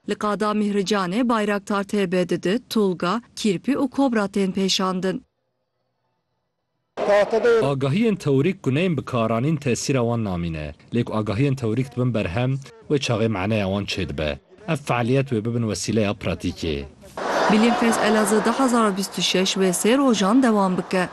Li Qada Mîhricanê Bayraktar TB2, Tulga, Kîrpî û Kobra tên pêşandin. Agahiyên teorîk ku neyên bikaranîn tesîra wan namîne. Lê ku agahiyên teorîk dibin berhem, wê çaxê maneya wan çêdibe. Ev fealiyet wê bibin wesîleya pratîkê. Bilîmfest Elazığ du hezar û bîst û şeş wê sê rojan dewam bike.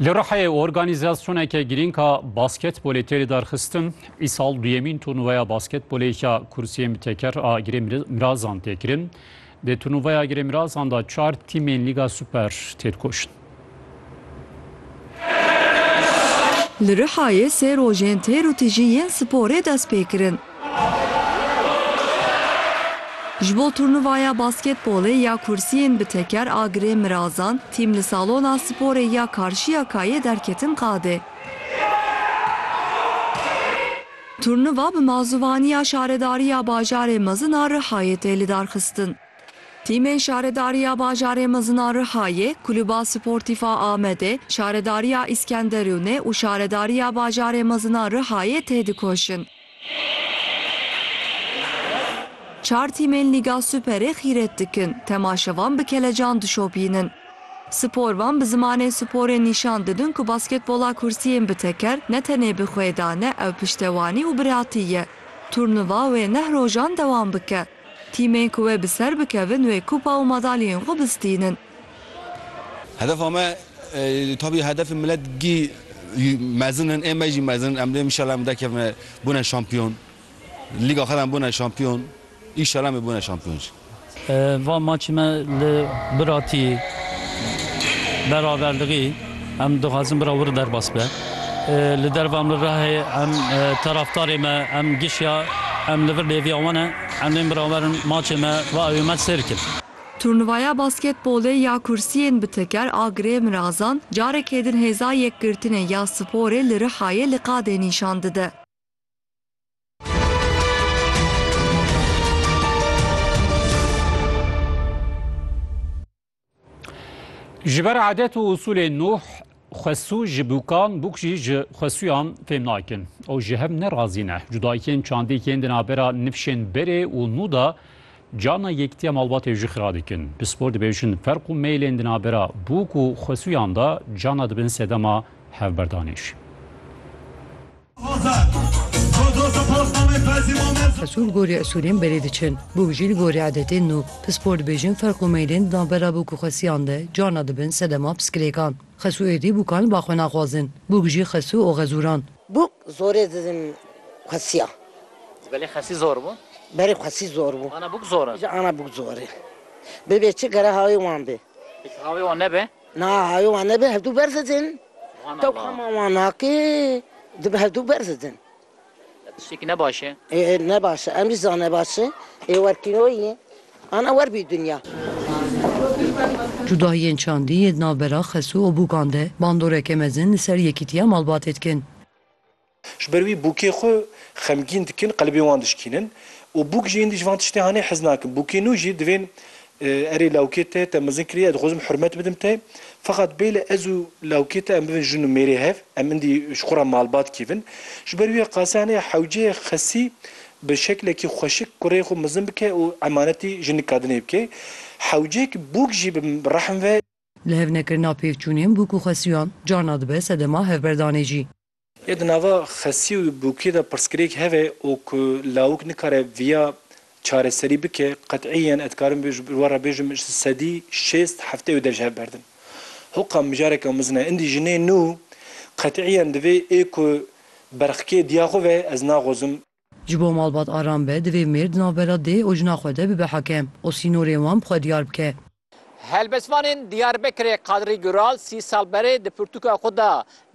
Li Rihayê organîzasyoneke girîng a basketbolê tê lidarxistin. Îsal duyemîn turnuvaya basketbolê ya kursiyên bi teker a Girê Mirazan tê kirin. Di turnuvaya Girê Mirazan de çar tîmên Lîga Super tê dikoşin. Li Rihayê sê rojên têr û tijî yên sporê dest pê kirin. Ji bo turnuvaya basketbolê ya kursiyên bi teker a Girê Mirazan, tîm li Salona Sporê ya Karşiyakayê derketin qadê. Turnuva bi mazûvaniya Şaredariya Bajarê Mezin a Rihayê tê lidarxistin. Tîmên Şaredariya Bajarê Mezin a Rihayê, Kulûba Sportîf a Amedê, Şaredariya Îskenderûnê û Şaredariya Bajarê Mezin a Rihayê têdikoşin. Çar tîmên Lîga Superê xîret dikin, temaşevan bi kelecan dişopînin. Sporvan bi zimanê sporê nîşan didin ku basketbola kursî yên bi teker ne tenê bi xwê de ne ew piştewanî û biratî ye. Turnuva wê neh rojan dewam bike. Tîmên ku wê bi ser bikevin wê kupa û madalyeyên xwe bistînin. Hedefa me tabî hedefê milet gî mezin in ê me jî mezin in em dê înşallah em derkevine bûne şampiyon lîga xwe de em bûne şampiyon înşallah em ê bûne şampiyon jî. Va maçê me li Biratî beraverdiqî em dixwazin bira wir derbas be li derva em li Rihê em taraftarê me em gişiya em li vir lêviya wan e em ên birawerin maçê me va ew ê me sêr bikin. Turnuvaya basketbolê ya kursiyên bi teker a Girê Mirazan carekê din hêza yekgirtinê ya sporê li Rihayê li qadê nîşan dide. Ji ber adet û usûlên nûh Xwesû ji bûkan, bûk jî ji xwesûyan fêm nakin. Ew ji hev ne razî ne. Cudayîkên çandî yên di navbera nifşên berê û nû de carna yekitiya malbatê jî xira dikin. Pispor dibêjin ferq û meylên di navbera bûk û xwesûyan de carna dibin sedema hevberdanê jî. Esûr li gorî esûrên berê diçin. Bûk jî li gorî edetên nû. Pispor dibêjin ferq û meylên di navbera bûk û xesiyan de carna dibin sedema piskilêkan. Xesû êdî bûkan li ba xwe naxwazin. Bûk jî xesû û xezûran. Bûk zorê didin xesiyan. Ji berê xesî zor bû? Ji berê xesî zor bû. Ana bûk zor in? Ji ana bûk zor in. Bibê çi gere havê wan bê. Pêkî havê wan nebe? Na hayo wan nebe hevdu berz edin. Tewxama wan naki dibe hevdu berz edin. Tiştekî ne baş e. Ê ne baş e. Em jî zane baş e. Ê werkîno yî. Ana wer bî dinya. Cudahiyên çandî yê di navbera Xesû û Bûkan de bandoreke mezin li ser Yekîtiya Malbatê dikin. Ji ber wî bûkê xwe xemgîn dikin, qelibên wan dişkînin û bûk jî hîndî ji van tiştên hanê hez nakin. Bûkê nû jî divên Erê lawkê te, te mezin kiriye, ez dixwazim hurmet bidim te. Feqat bêle ez û lawkê te em bibin jin û mêrê hev, em hîndî ji xwe re malbat kêvin. Ji ber wî qasê hanê hewceyê xesî bi şeklekî xweşik kureyê xwe mezin bike û emanetî jinik kadinê bike. Hewcek bûk jî bi rehm ve. Li hev nekirina pêkçûnên bûk û xesiyan carna dibe sedema hevberdanê jî. Yê di nava xesî û bûkê de pirsgirêk heve û ku lawik nikare viya çareserî bike, qet'îyen ez dikarim bi we re bêjim ji sedî şêst heftê û dev ji hev berdin. Hoqa mijareke mizin e. Indî jinê nû qet'îyen divê ê ku berxkê diya xwe ve ez naxwazim. Ji bo malbat aram be divê mêr di navbera dê û jina xwe de bibe hekem û sînorên wan bi xwe diyar bike. Helbestvanên Diyarbekirê Kadrî Gural sî sal berê di pirtûka xwe de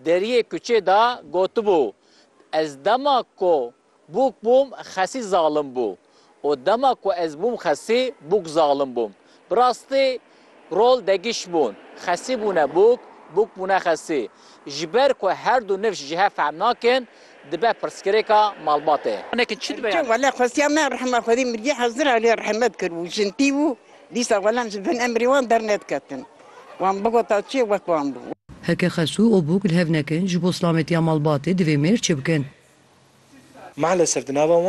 Deriyê Kuçê de gotibû, Ez dema ku bûk bûm xesî zalim bû û dema ku ez bûm xesî bûk zalim bûm. Bi rastî Rol degiş bûn. Xesî bûne bûk, bûk bûne xesî. Ji ber ku her du nifş ji hev fehm nakin, dibe pirsgirêka malbatê. Eke çi dibe yani? Wele xwestiya me rehma Xwedî mirî hezir a lê rehmet kir û jintî bû, dîsa welem ji bin emrê wan dernediketin. Wan bigota çê wek wan bû. Heke xesû û bûk li hev nekin, ji bo silametiya malbatê divê mêr çi bikin? Malesef di nava wan.